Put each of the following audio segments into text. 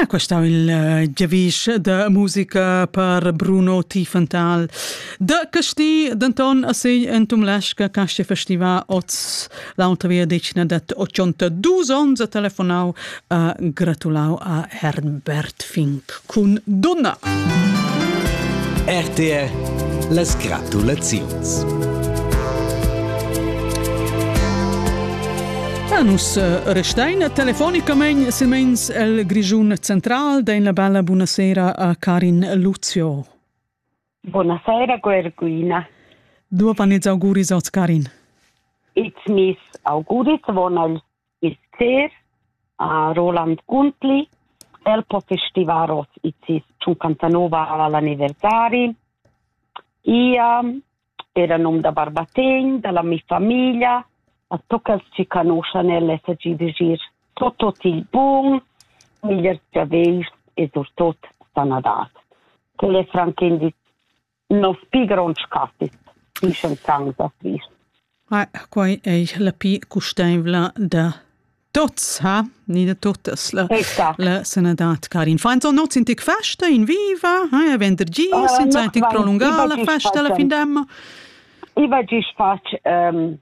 Ah, questo è il uh, giavisch da musica per Bruno Tiefenthal. Da Casti, d'Anton Assegl en tum lesca casce festival oz l'altra via decina dat 82 onns a telefonau a gratulau a Herbert Fink. cun dunna. RTR las gratulaziuns. Ja, nus eh, restein telefonicamain silmeins el Grischun central, dein la bella buonasera a Karin Lucio. Buonasera, Guerguina. Du panez auguris oz, Karin. It's mis auguris vonal. Ister, a Roland Guntli. El po festivar oz i sis 59 al anniversari. Ia era num da Barbategn, dalla mi famiglia, a toccals ci canuschan el SG de gir tot tot il bun, migliers giaveis e surtot sanadat. Quel è franc Nos pi gronds catis dischan tant da Christ. Quai è la pi custaivla da tots, ha? Ni da tuttas, la, la sanadad, Karin. Fein so noz in tic festa in viva, ha? Vendergis, uh, in tic prolungà la festa alla fin d'emma. I va gist fatg um,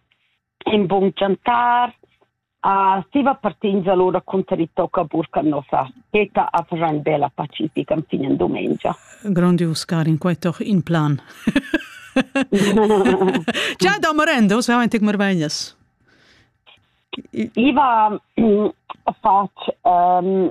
in bun chantar, A siva partins allura cunter i tocca burcar nossa teta a far ün bella pacifica fin in dumengia. Grandius, Karin, quai toch in plan. Già da morendo, se avanti come vegnas. Iva ha fatg um,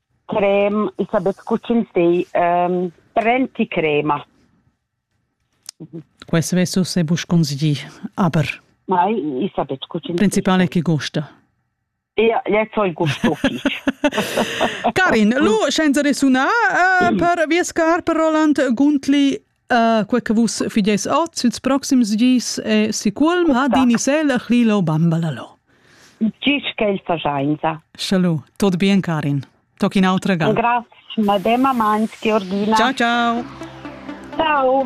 crem, i sa betg co ch'ins di, ehm, prenticrema. Questo è forse busconzi, aber. Ma i sa betg co ch'ins Principale che gusta. Ja, jetzt soll gusto Karin, lu scienza de sunar uh, per vies car per Roland Guntli Uh, quei che vus fideis oz ils proxims gis è sicurm ha din isel Lilo Bambalalo. Gis che il fasainza. Schalu, tot bien Karin. Toc in autra ga. Grazie, madema Mans, Georgina. Ciao ciao. Ciao.